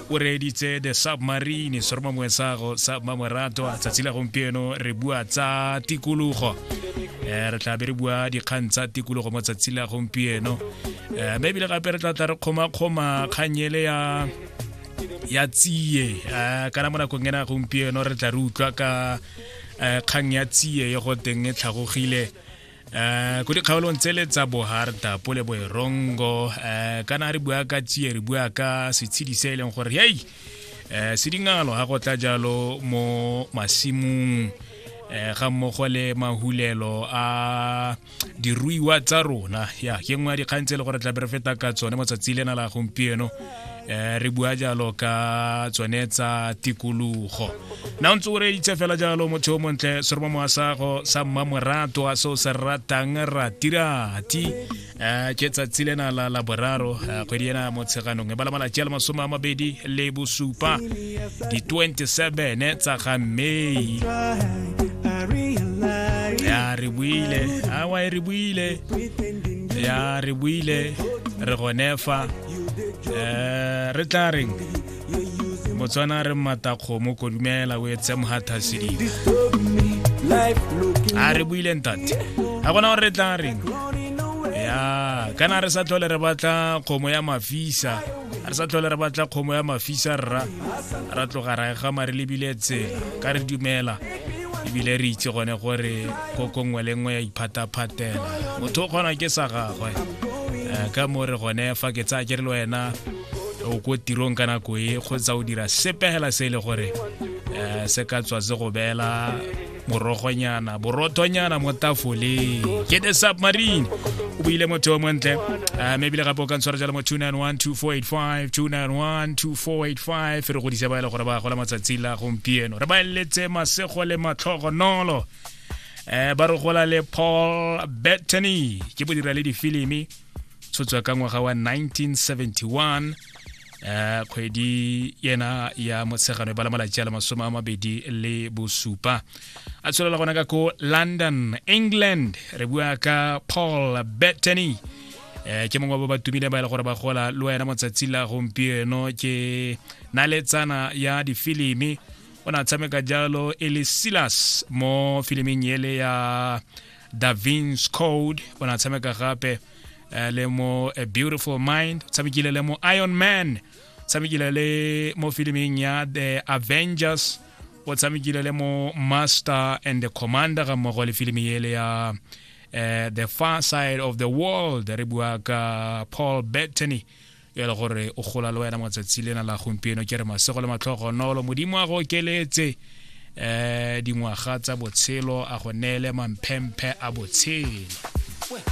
o reeditse the submarine seroma moesago sa mmamoratwa tsatsi la gompieno re bua tsa tikologo um re tlabe re bua dikgang tsa tikologo mo tsatsi la gompieno um eh, mme ebile gape re tla tla re kgomakgoma kganyele ya ya tsie um kana mo nakong ena gompieno re tla re utlwa ka um kgang ya tsie ye go teng e tlhagogile Uh, ko dikgaolong tsele tsa boharta pole boerongo uh, eh, kana re bua ka tsie re bua ka setshedi se e leng gore hei uh, eh, se dingalo ga go tla jalo mo masimong um ga mmogo le mahulelo a diruiwa tsa rona ya ke nngwe ya dikgang tse e le gore tla bere feta ka tsone mo tsatsi lena la gompieno um re bua jalo ka tsone tsa tikologo na o ntse o reeditse fela jalo motho o montle seromo moasago sa mmamorato a se o se ratang ratirati um ke tsatsi lena la la boraro kgwedi ena motsheganong e bala malatsi a le masome a mabedi le bosupa di-27 tsa ga may ya re buile awa e re buile ya re buile re gonefa um re tla reng botswana re mmatakgomo kodumela o etse mohathasedi a re buile ntate ga gona gore re tla reng ya kana re sa tlhole re batla kgomo ya mafisa re sa tlhole re batla kgomo ya mafisa rra ra tloga ra egama re lebile tsela ka re dumela ebile re itse gone gore koko nngwe le nngwe ya iphataphatela motho o kgona ke sa gagwe eh, ka mo re gone fa ke tsaya ke re le wena o ko tirong ka nako e kgotsa o dira sepegela se e le gore um se ka tswa se go beela morogonyana borothonyana mo tafoleng ke the submarine o buile motho o montle um ebile gape o ka ntshwara jalo mo 291 2485 291 485 re godise ba e le gore ba gola matsatsi la gompieno re ba eletse masego le matlhogonolo um ba re gola le paul bettany ke bodira le difilimi tshotswa ka ngwaga wa 1971 eh kgwedi yena ya motshegano e bala malatsi a le masome a mabedi le bosupa a tsholela gona ka ko london england re bua ka paul bettany eh ke mongwe wa ba tumile ba ile e gore ba gola le wena motsatsi la gompieno ke naletsana ya difilimi o ne a tshameka jalo e le silas mo filiming ele ya da vins code o ne a tshameka gape eh, le mo a beautiful mind o tshamekile le mo iron man tshamekile le mo filiming ya the avengers o tshamekile le mo master and the commander ga mmogo le filimi ele ya uh, the far side of the world re bua ka paul bettany yo e le gore o gola le wena matsatsi lena la gompieno ke re masego le matlhogonolo modimo a go okeletse um dingwaga tsa botshelo a go neele mamphemphe a botshelo